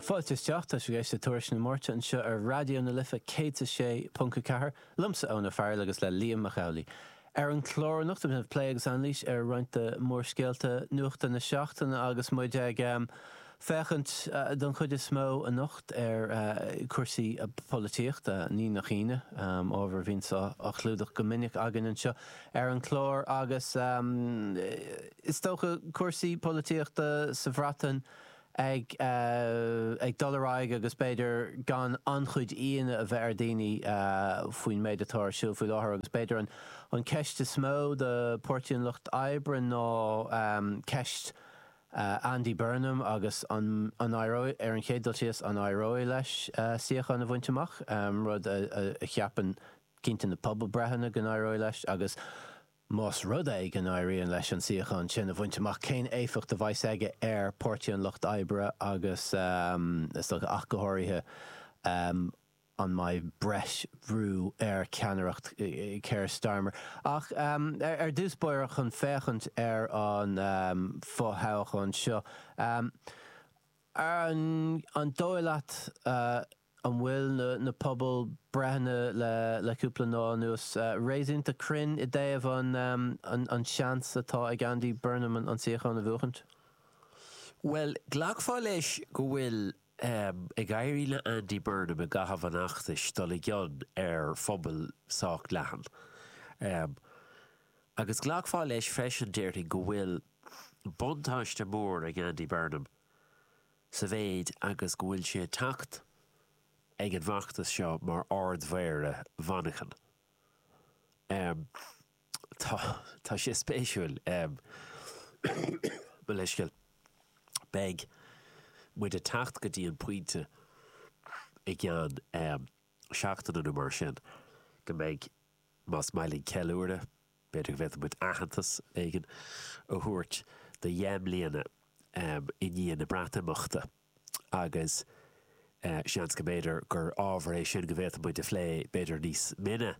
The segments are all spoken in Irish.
Fáilte isteach, tá sibh ag éisteacht le Tuairisc na Máirte anseo ar Raidió na Life 106.4, liomsa Eoin Ó Fearghail agus le Liam Mac Amhlaigh. Ar an gclár anocht déanfaimid plé agus anailís ar roinnt de mhórscéalta nuachta na seachtaine agus muid ag féachaint don chuid is mó anocht ar chúrsaí polaitíochta, ní nach ionadh, ábhar a bhíonn á chlúdach go minic againn anseo. ar an gclár agus is dócha cúrsaí polaitíochta sa Bhreatain ag dul ar aghaidh agus b'fhéidir gan an-chuid ionadh a bheith ar dhaoine faoin méid atá ar siúl faoi láthair agus b'fhéidir an ceist is mó do Pháirtí an Lucht Oibre ná ceist Andy Burnham agus an éireoidh, ar an chéad dul síos, an éireoidh leis suíochán a bhaint amach, rud a cheapann cinnte na pobalbhreitheanna go n-éireoidh leis agus, más rud é go n-éiríonn leis an suíochán sin a bhaint amach, cén éifeacht a bheas aige ar Páirtí an Lucht Oibre agus, is dócha, ach go háirithe, an mbeidh breis bhrú ar cheannaireacht Keir Starmer? Ach ar dtús báire, chun féachaint ar an fo-thoghchán seo, an dóigh leat An bhfuil na pobalbhreitheanna le cúpla lá anuas réasúnta cruinn i dtaobh an seans atá ag Andy Burnham an suíochán a bhuachaint? Bhuel, ghlacfá leis go bhfuil ag éirí le Andy Burnham i gcaitheamh an fheachtais dul i gcion ar phobal sách leathan. Agus ghlacfá leis freisin, déarfainn, go bhfuil buntáiste mór ag Andy Burnham. Sa mhéid agus go bhfuil sé ag teacht ag an bhfeachtas seo mar Ard-Mhéara Mhanchain, tá, tá sé spéisiúil, mo leithscéal, beidh muid ag teacht go dtí an pointe i gceann seachtaine nó mar sin go mbeidh, más maith leat, ceiliúradh. B'fhéidir go bhféadfadh muid aitheantas éigin a thabhairt do dheich mbliana i ndiaidh na Breatimeachta agus seans go mb'fhéidir gur ábhar é sin go bhféadfadh muid a phlé b'fhéidir níos mine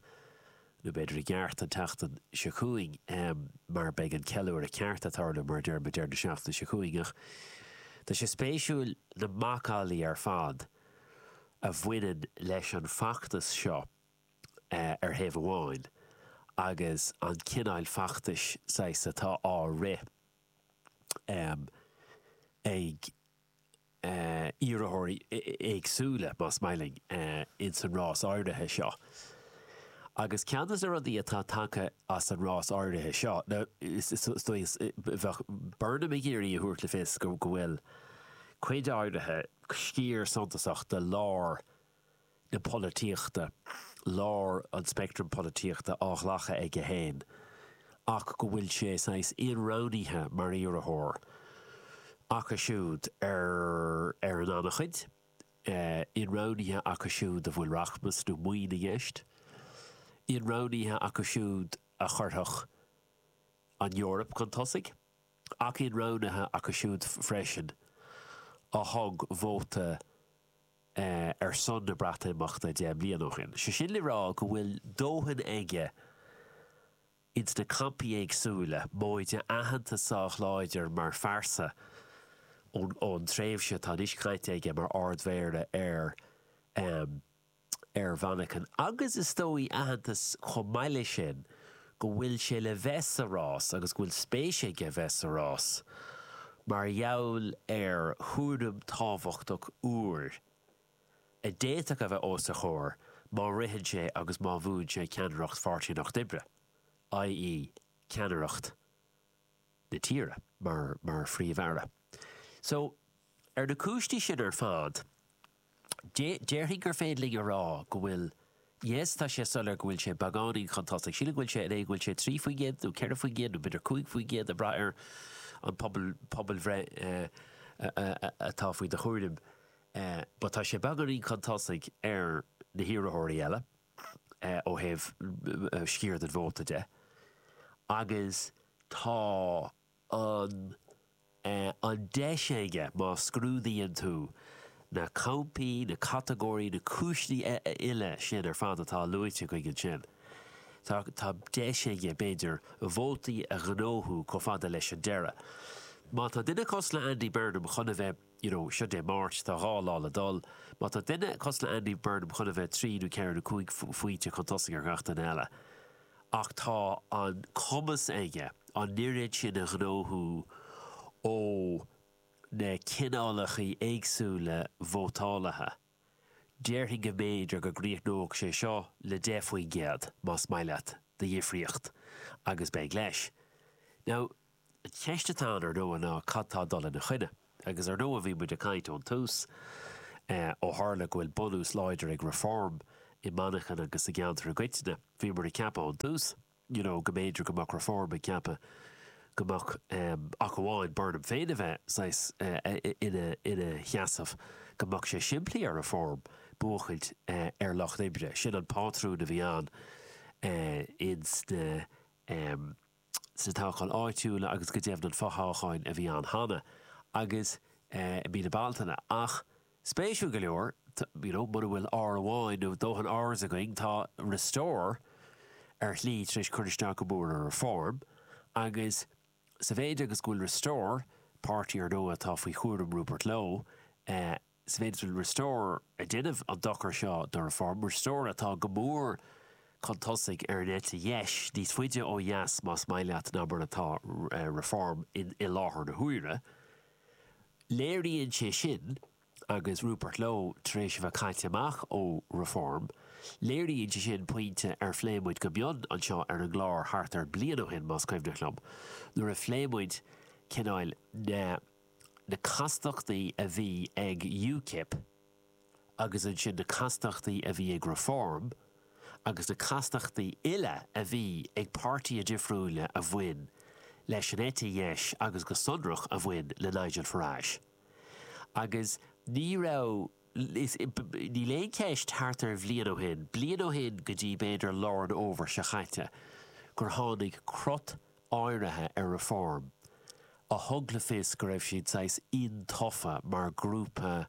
nó b'fhéidir i gceart an tseachtain seo chugainn mar beidh an ceiliúradh ceart ag tarlú mar a deir muid deireadh na seachtaine seo chugainn ach tá sé spéisiúil na macallaí ar fad a bhaineann leis an bhfeachtas seo ar thaobh amháin agus an cineáil feachtais saghas atá á rith ag iarrthóirí éagsúla, más maith linn, ins an rás áirithe seo. Agus ceann de na rudaí atá tagtha as an rás áirithe seo, nó is dóigh, bheadh Burnham ag iarraidh a thabhairt le fios go bhfuil cuid áirithe, sciar suntasach de lár, na polaitíochta, lár an speictrim polaitíochta á ghlacadh aige féin ach go bhfuil sé saghas ionroghnaithe mar iarrthóir acu siúd ar ar an an-chuid, ionroghnaithe acu siúd a bhfuil rachmas nó maoin i gceist, ionroghnaithe acu siúd a chuirfeadh an Eoraip chun tosaigh ach ionroghnaithe acu siúd freisin a thug vóta ar son na Breatimeachta deich mbliana ó shin. Sé sin le rá go bhfuil dóthain aige ins na campaí éagsúla, móide aitheantas sách láidir mar phearsa ón tréimhse atá anois caite aige mar Ard-Mhéara ar ar Mhanchain agus is dóigh aitheantas chomh maith leis sin go bhfuil sé le bheith sa rás agus go bhfuil spéis aige bheith sa rás mar gheall ar chúram tábhachtach úr a d'fhéadfadh a bheith os a chomhair má ritheann sé agus má bhuann sé ceannaireacht Pháirtí an Lucht Oibre, i.e. ceannaireacht na tíre mar mar Phríomh-Aire. So, ar na cúinsí sin ar fad, Déarfainn gur féidir linn a rá go bhfuil, yes, tá sé soiléir go bhfuil sé beagáinín chun tosaigh. Sílim go bhfuil sé go bhfuil sé trí faoin gcéad nó ceithre faoin gcéad nó b'fhéidir cúig faoin gcéad ag braith ar an pobal, pobalbhreith atá faoi do chúraim but tá sé beagáinín chun tosaigh ar na hiarrthóirí eile ó thaobh sciar den vóta de agus tá. an mbeidh an deis aige má scrúdaíonn tú na campaí, na catagóirí, na cúiseanna uile sin ar fad atá luaite againn ansin, tá deis aige, b'fhéidir, vótaí a ghnóthú chomh fada leis an deireadh. Má tá duine cosúil le Andy Burnham chun a bheith, you know, seo Dé Máirt, tá dhá lá le dul, má tá duine cosúil le Andy Burnham chun a bheith trí nó ceithre nó cúig phointe chun tosaigh ar gach duine eile, ach tá an cumas aige an oiread sin a ghnóthú ó na cineálacha éagsúla vótálaithe, déarfainn go mb'fhéidir go gcríochnódh sé seo le 10 faoin gcéad, más maith leat, de dhifríocht, agus beidh leis. Now. An cheist atá ann ar ndóigh ná cad tá ag dul ina choinne? Agus ar ndóigh bhí muid ag caint ón tús, ó tharla go bhfuil bunús láidir ag Reform i Manchain agus sa gceantar i gcoitinne, bhí muid ag ceapadh ón tús you know go mb'fhéidir go mbeadh Reform ag ceapadh go mbeadh ach amháin Burnham féin a bheith saghas ina sheasamh, go mbeadh sé simplí ar Reform buachaint ar Lucht Oibre. Sin an pátrún a bhí ann ins na. sna toghcháin áitiúla agus go deimhin an fothoghcháin a bhí ann cheana agus i mí na Bealtaine ach spéisiúil go leor you know mura bhfuil R amháin nó dóthain Rs againn tá Restore ar shlí tar éis cur isteach go mór ar Reform agus sa mhéid is go bhfuil Restore, páirtí ar ndóigh atá faoi chúram Rupert Lowe, eh. Sa mhéid is Restore ag déanamh an dochar seo do Reform. Restore atá go mór chun tosaigh ar an eite dheis, níos faide ó dheas más maith leat ná mar atá Reform i láthair na huaire. Léiríonn sé sin, agus Rupert Lowe tar éis a bheith caite amach ó Reform, léiríonn sé sin pointe ar phléigh muid go mion anseo ar an gclár thart ar bliain ó shin, más cuimhneach liom, nuair a phléigh muid cineáil na. na castachtaí a bhí ag UKIP agus ansin na castachtaí a bhí ag Reform agus na castachtaí uile a bhí ag páirtithe difriúila a bhain leis an eite dheis agus go sonrach a bhain le Nigel Farage. Agus ní raibh, níl aon cheist, thart ar bhliain ó shin, bliain ó shin go dtí b'fhéidir lár an Fhómhair seo chaite, gur tháinig crot áirithe ar Reform a thug le fios go raibh siad saghas intofa mar ghrúpa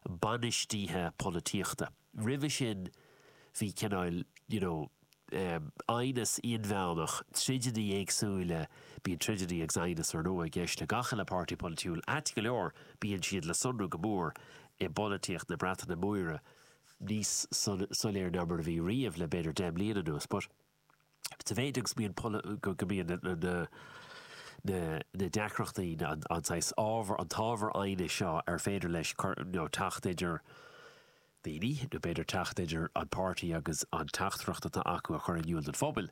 bainistíthe polaitíochta. Roimhe sin bhí cineáil you know aighneas inmheánach, troideannaí éagsúla, bíonn troideannaí agus aighneas ar ndóigh i gceist le gach uile páirtí polaitiúil, ait go leor bíonn siad le sonrú go mór i bpolaitíocht na Breataine Móire, níos soiléire ná mar a bhí riamh le b'fhéidir deich mbliana anuas. But. sa mhéid agus go mbíonn na deacrachtaí, an saghas ábhar, an t-ábhar aighnis seo ar féidir leis teacht idir daoine, nó b'fhéidir teacht idir an páirtí agus an teachtaireacht atá acu a chur in iúl don phobal.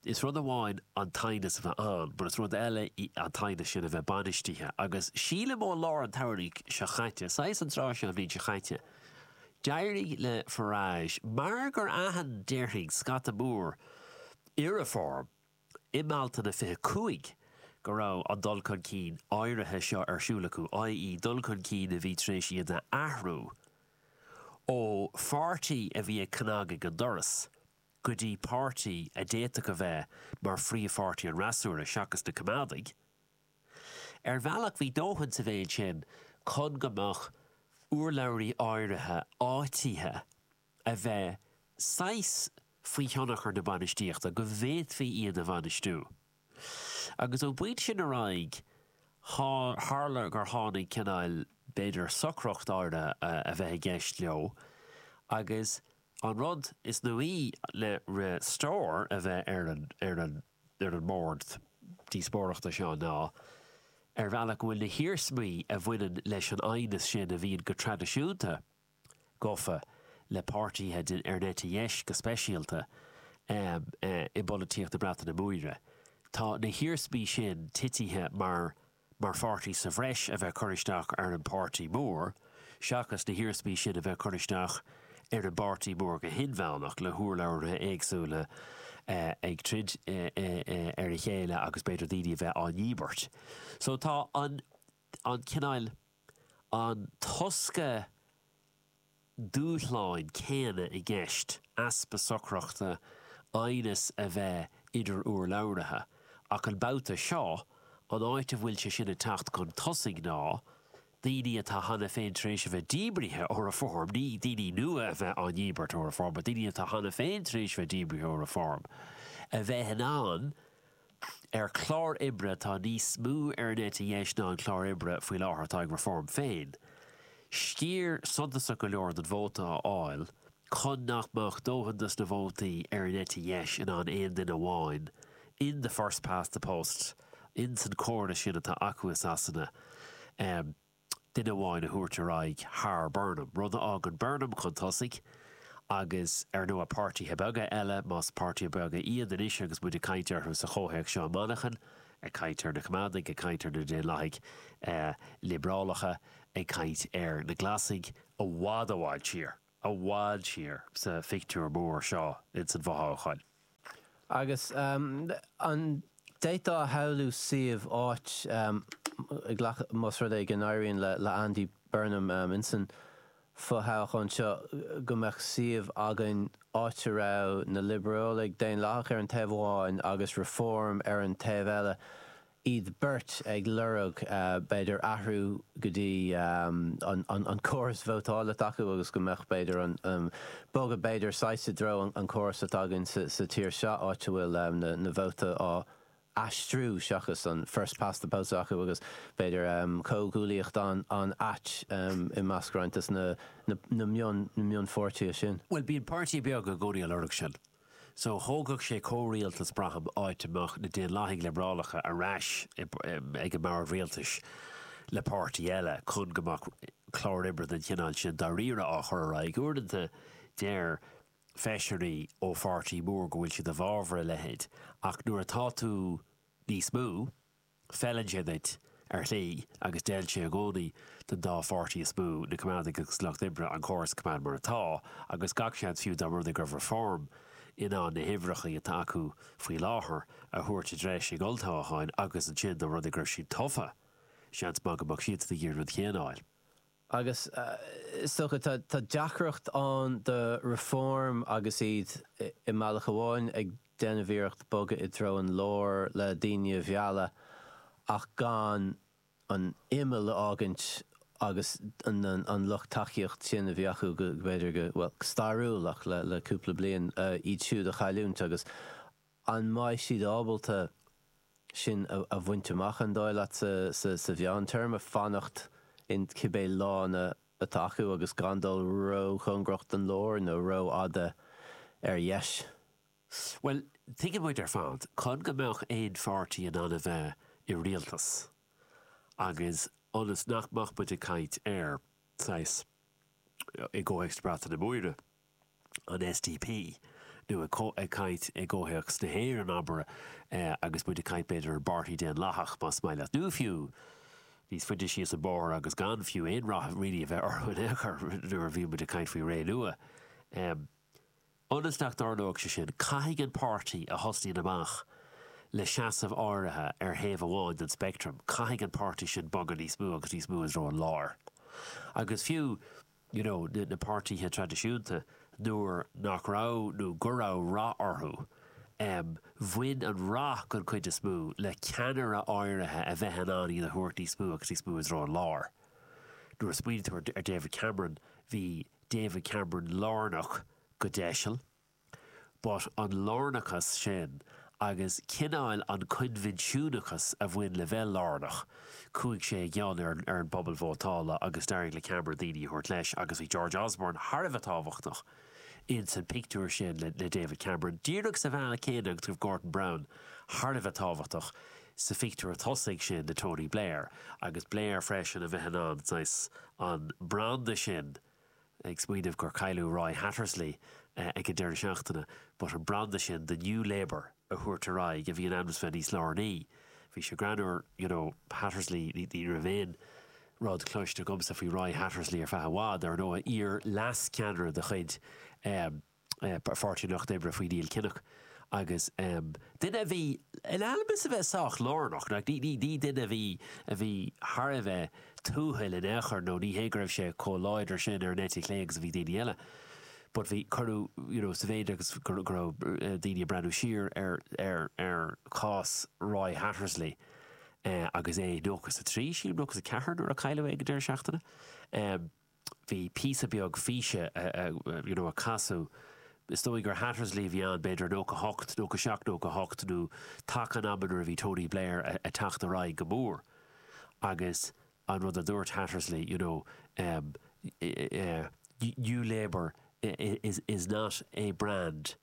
Is rud amháin an t-aighneas a bheith ann, but is rud eile an t-aighneas sin a bheith bainistithe. Agus sílim ó lár an tsamhraidh seo chaite, saghas an tráth seo an bhliain seo chaite, D'éirigh le Farage mar gur aithin, déarfainn, scata mór i Reform i mBealtaine 25 go raibh an dul chun cinn áirithe seo ar siúl acu, i.e. dul chun cinn a bhí tar éis iad a athrú ó pháirtí a bhí ag cnagadh ag an doras go dtí páirtí a d'fhéadfadh a bheith mar phríomhpháirtí an fhreasúra, seachas na Coimeádaigh. Ar bhealach bhí dóthain sa mhéid sin chun go mbeadh urlabhraithe áirithe áitithe a bheith saghas faoi thionchar na bainistíochta, go bhféadfaí iad a bhainistiú. Agus ón bpointe sin ar aghaidh tharla gur tháinig cineál, b'fhéidir, socracht áirithe a bheith i gceist leo agus an rud is nuaí le Restore a bheith ar an ar an mbord díospóireachta seo ná ar bhealach go bhfuil na hiarsmaí a bhaineann leis an aighneas sin a bhíonn go traidisiúnta gafa le páirtithe den eite dheis go speisialta i bpolaitíocht na Breataine Móire, tá na hiarsmaí sin titithe mar. mar pháirtí sa bhreis a bheith curtha isteach ar an bpáirtí mór seachas na hiarsmaí sin a bheith curtha isteach ar an bpáirtí mór go hinmheánach le hurlabhraithe éagsúla ag troid ar a chéile agus b'fhéidir daoine a bheith á ndíbirt. So tá an cineál, an tosca, dúshláin céanna i gceist, easpa socrachta, aighneas a bheith idir urlabhraithe. Ach an babhta seo, an áit a bhfuil sé sin ag teacht chun tosaigh ná daoine atá cheana féin tar éis a bheith díbrithe ó Reform, ní daoine nua a bheith á ndíbirt ó Reform, ach daoine atá cheana féin tar éis a bheith díbrithe ó Reform, a bheith in ann ar clár oibre atá níos mó ar an eite dheis ná an clár oibre faoi láthair atá ag Reform féin. Sciar suntasach go leor den vóta a fháil chun nach mbeadh dóthain de na vótaí ar an eite dheis in ann aon duine amháin in the first past the post in san chóras sin atá acu i Sasana a duine amháin a thabhairt ar aghaidh thar Burnham, rud a fhágann Burnham chun tosaigh agus, ar ndóigh, páirtithe beaga eile, más páirtithe beaga iad anois agus muid ag caint orthu sa chomhthéacs seo i Manchain, ag caint ar na Coimeádaigh, ag caint ar na Daonlathaigh Liobrálacha, ag caint ar na Glasaigh, i bhfad i bhfad thiar. i bhfad thiar sa phictiúr mór seo ins an bhfothoghchán. Agus an d'fhéadfá a shamhlú suíomh, áit, ag glacadh, más rud é go n-éiríonn le Andy Burnham ins an bhfothoghchán seo, go mbeadh suíomh againn áit a raibh na Liobrálaigh Dhaonlathacha ar an taobh amháin agus Reform ar an taobh eile, iad beirt ag lorg b'fhéidir athrú go dtí an córas vótáil atá acu agus go mbeadh b'fhéidir an bogadh b'fhéidir saghas i dtreo an córas atá againn sa tír seo áit a bhfuil na vóta á aistriú seachas an first past the post acu agus b'fhéidir comhghuaillíocht an-ait i measc roinnt de na mionpháirtithe sin. Bhuel bíonn páirtí beag i gcónaí ag lorg sin. So, thógfadh sé comhrialtas braithim áit a mbeadh na Daonlathaigh Liobrálacha ar ais ag an mbord rialtais le páirtí eile chun go mbeadh clár oibre den chineál sin dáiríre á chur ar aghaidh. Uaireanta deir feisirí ó pháirtí mór go bhfuil siad i bhfabhar a leithéid ach nuair atá tú níos mó, Feileann sé duit, ar shlí, agus d'fheil sé i gcónaí don dá pháirtí is mó, na Coimeádaigh agus Lucht Oibre, an córas a choimeád mar atá, agus gach seans fiú dá mba rud é go raibh Reform in ann na huimhreacha atá acu faoi láthair a thabhairt i dtreis ag olltoghchán agus ansin dá mba rud é go raibh siad tofa, seans maith go mbeadh siadsan ag iarraidh an rud chéanna a fháil. Agus is dócha tá deacracht ann do Reform agus iad i mbealach amháin ag déanamh iarracht bogadh i dtreo an láir le daoine a mhealladh ach gan an t-imeall a fhágaint agus an lucht tacaíocht sin a bhí acu go, b'fhéidir go, bhuel, stairiúil ach le cúpla bliain, iad siúd a chailliúint agus. An mbeidh siad ábalta sin a bhaint amach, an dóigh leat, sa mheántéarma, fanacht in cibé lána atá acu agus gan dul róchóngarach don lár nó rófhada ar dheis? Bhuel, tuigeann muid ar fad, chun go mbeadh aon pháirtí in ann a bheith i rialtas agus ionas nach mbeadh muid ag caint ar, saghas, i gcomhthéacs na Breataine Móire, an SDP, nó ag caint i gcomhthéacs na hÉireann, abair, agus muid ag caint b'fhéidir ar an bPáirtí Daonlathach, más maith leat, nó fiú níos faide síos an bóthar agus gan fiú aon rath really a bheith orthu in aon chor, nuair a bhíonn muid ag caint faoi Renua. Ionas nach dtarlóidh sé sin, caithfidh an páirtí a thosnaíonn amach le seasamh áirithe ar thaobh amháin den speictream, caithfidh an páirtí sin bogadh níos mó agus níos mó i dtreo an láir. Agus fiú, you know na na páirtithe traidisiúnta nuair nach raibh nó go raibh rath orthu em bhain an rath den chuid is mó le ceannaire áirithe a bheith in ann iad a thabhairt níos mó agus níos mó i dtreo an láir. Nuair a smaoiníonn tú ar ar David Cameron bhí David Cameron lárnach go deiseal. but an lárnachas sin agus cineál an coinbhinsiúnachas a bhain le bheith lárnach, chuaigh sé i gcion ar an ar an bpobal vótála agus d'éirigh le Cameron daoine a thabhairt leis agus bhí George Osborne thar a bheith tábhachtach in san pictiúr sin le le David Cameron díreach sa bhealach céanna agus go raibh Gordon Brown thar a bheith tábhachtach sa phictiúr tosaigh sin le Tony Blair agus Blair freisin a bheith in ann saghas an branda sin a ag smaoineamh gur cailleadh Roy Hattersley ag an deireadh seachtaine but an branda sin de New Labour a thabhairt ar aghaidh a bhí in ainm is a bheith níos lárnaí. Bhí sé greannúr you know Hattersley ní ní raibh aon rud cloiste agamsa faoi Roy Hattersley ar feadh i bhfad. Ar ndóigh iar-leas-ceannaire de chuid Pháirtí an Lucht Oibre faoi Neil Kinnock agus duine a bhí in ainm is a bheith sách lárnach, ní duine a bhí a bhí thar a bheith tuathail in aon chor nó ní hé go raibh sé chomh láidir sin ar an eite chlé agus a bhí daoine eile but bhí cuireadh you know sa mhéid agus go raibh daoine ag breathnú siar ar ar chás Roy Hattersley agus é 93, sílim, nó 94 nuair a cailleadh é ag an deireadh seachtaine. bhí píosa beag físe you know a casadh is dóigh gur Hattersley a bhí ann b'fhéidir i nócha hocht, nócha seacht, nócha hocht nó taca an ama nuair a bhí Tony Blair a' teacht ar aghaidh go mór agus an rud a dúirt Hattersley you know em eh eh New Labour is is not a brand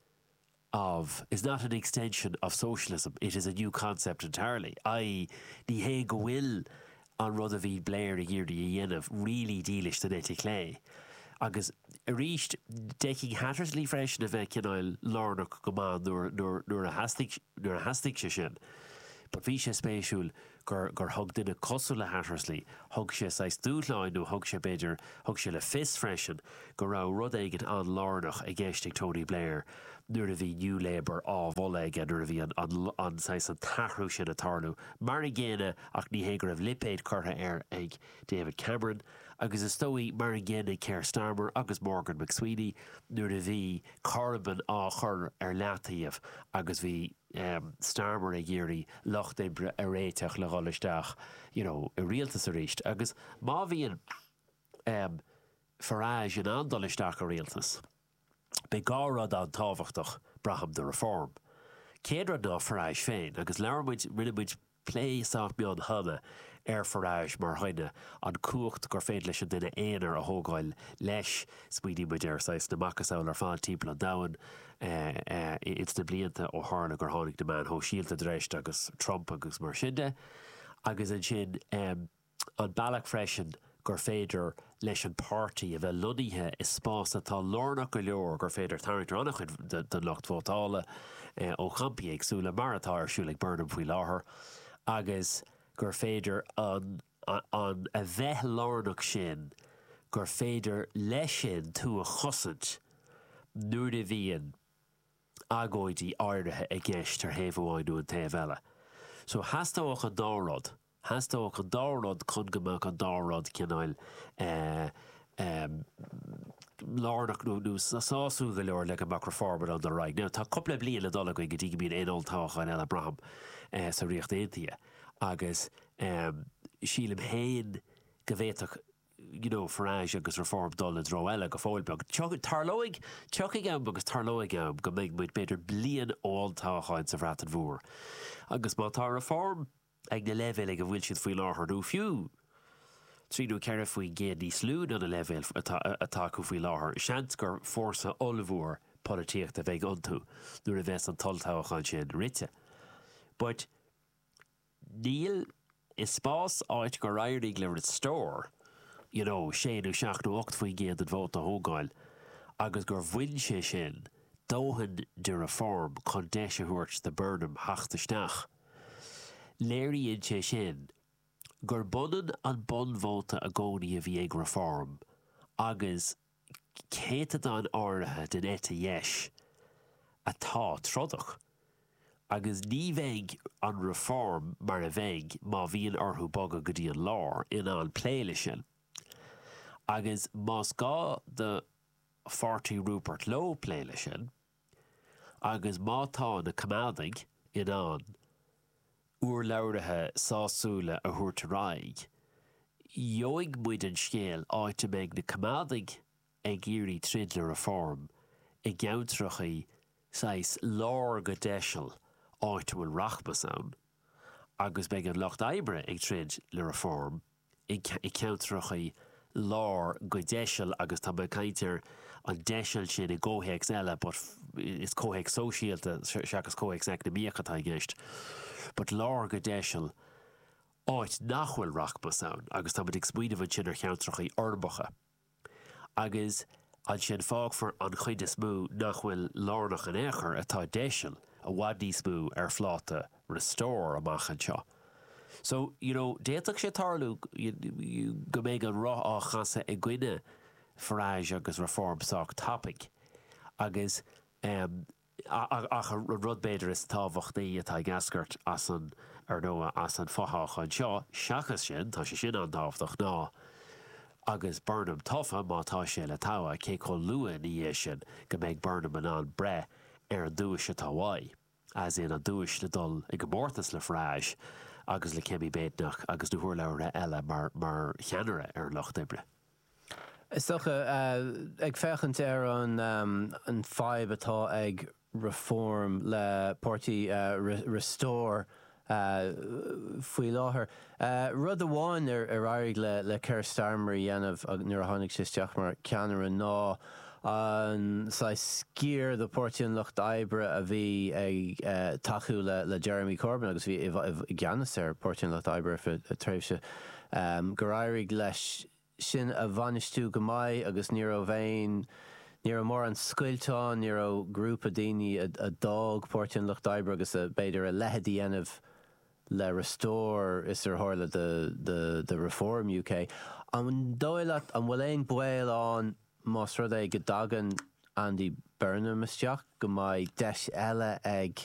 of is not an extension of socialism, it is a new concept entirely', i. ní hé go bhfuil an rud a bhí Blair ag iarraidh a dhéanamh really dílis don eite chlé. Agus arís, d'fheicfinn Hattersley freisin a bheith cineál lárnach go maith nuair a theastaigh sé sin. But bhí sé spéisiúil gur, gur thug duine cosúil le Hattersley, thug sé saghas dúshlán nó thug sé, b'fhéidir, thug sé le fios freisin go raibh rud éicint an-lárnach i gceist ag Tony Blair nuair a bhí New Labour á mholadh aige, nuair a bhí an, an, an, saghas, an t-athrú sin ag tarlú. Mar an gcéanna, ach ní hé go raibh lipéid curtha air ag David Cameron, agus is dóigh, mar an gcéanna ag Keir Starmer agus Morgan McSweeney nuair a bhí Corbyn á chur ar leataobh agus bhí, Starmer ag iarraidh Lucht Oibre a réiteach le dhul isteach you know i rialtas arís agus má bhíonn Farage in ann dul isteach i rialtas beidh dhá rud an-tábhachtach braithim do Reform. Céad rud ná Farage féin agus labhair muid, rinne muid, Plé sách mion cheana ar Farage mar dhuine, an cumhacht gur féidir leis an duine aonair a thógáil leis. Smaoinigh muid ar saghas na macasamhla ar fad timpeall an domhain ins na blianta ó tharla gur tháinig na meáin shóisialta in dtreis agus Trump agus mar sin de agus ansin An bealach freisin gur féidir leis an páirtí a bheith lonnaithe i spás atá lárnach go leor gur féidir tarraingt ar an-chuid den lucht vótála ó champaí éagsúla, mar atá ar siúl ag Burnham faoi láthair, agus gur féidir an an a bheith lárnach sin gur féidir leis sin tú a chosaint nuair a bhíonn agóidí áirithe i gceist ar thaobh amháin nó an taobh eile. So theastódh an dá rud. theastódh an dá rud chun go mbeadh an dá rud cineáil lárnach nó sásúil go leor le go mbeadh Reform in ann dul ar aghaidh. Now, tá cúpla bliain le dul againn go dtí go mbíonn aon olltoghcháin eile, braithim, sa Ríocht Aontaithe agus sílim féin go bhféadfadh you know Farage agus Reform dul i dtreo eile go fóill beag. Tarlóidh, tiocfaidh am agus tarlóidh am go mbeidh muid b'fhéidir bliain ó olltoghcháin sa Bhreatain Mhór agus má tá Reform, ag na leibhéil ag a bhfuil siad faoi láthair nó fiú trí nó ceithre faoin gcéad níos lú ná na leibhéil atá acu faoi láthair, seans gur fórsa ollmhór polaitíochta a bheidh iontu nuair a bheas an t-olltoghchán sin rite. But níl, i spás áit gur éirigh le Restore you know sé nó seacht nó ocht faoin gcéad den vóta a thógáil agus gur bhain sé sin dóthain de Reform chun deis a thabhairt do Burnham theacht isteach. Léiríonn sé sin gur b'ionann an bonn vóta i gcónaí a bhí ag Reform agus céatadáin áirithe den eite dheis atá trodach agus ní bheidh an Reform mar a bhí má bhíonn orthu bogadh go dtí an lár in ann plé leis sin. Agus ní gá do Pháirtí Rupert Lowe plé leis sin, Agus má tá na coimeádaigh in ann urlabhraithe sásúla a thabhairt ar aghaidh, gheobhaidh muid an scéal áit a mbeidh na coimeádaigh ag iarraidh troid le Reform i gceantracha saghas lár go deiseal áit a bhfuil rachmas ann agus beidh an lucht oibre ag troid le Reform i gceantracha lár go deiseal agus tá mé ag caint ar an deiseal sin i gcomhthéacs eile but is comhthéacs sóisialta seachas comhthéacs eacnamaíoch atá i gceist but lár go deiseal áit nach bhfuil rachmas ann agus táimid ag smaoineamh ansin ar cheantracha urbacha. agus ansin fágfar an chuid is mó nach bhfuil lárnach in aon chor, atá deiseal, i bhfad níos mó ar phláta Restore amach anseo. So, you know, d'fhéadfadh sé tarlú go mbeidh an roth á chasadh i gcoinne Farage agus Reform sách tapaigh agus, em, Ach an rud b'fhéidir is tábhachtaí atá ag eascairt as an, ar ndóigh, as an fothoghchán seo, seachas sin, tá sé sin an-tábhachtach, ná agus Burnham tofa, má tá sé le togha, cé chomh luath ina dhiaidh sin go mbeidh Burnham in ann breith ar an duais atá uaidh, as in, an duais le dul i gcomórtas le Farage agus le Kemi Badenoch agus na hurlabhraithe eile mar cheannaire ar an Lucht Oibre. Is dócha, ag féachaint ar an fadhb atá ag Reform le páirtí Restore faoi láthair, rud amháin ar éirigh le Keir Starmer a dhéanamh nuair a tháinig sé isteach mar cheannaire ná an saghas sciar de Pháirtí an Lucht Oibre a bhí ag tacú le Jeremy Corbyn agus bhí i gceannas ar Pháirtí an Lucht Oibre ar feadh tréimhse gur éirigh leis sin a bhainistiú go maith agus ní raibh aon, ní raibh mórán scoilt ann, ní raibh grúpa daoine a d'fhág Páirtí an Lucht Oibre agus a, b'fhéidir, a leithéid a dhéanamh le Restore is ar tharla do Reform UK. An dóigh leat, an bhfuil aon baol ann más rud é go dtagann Andy Burnham isteach go mbeidh deis eile ag.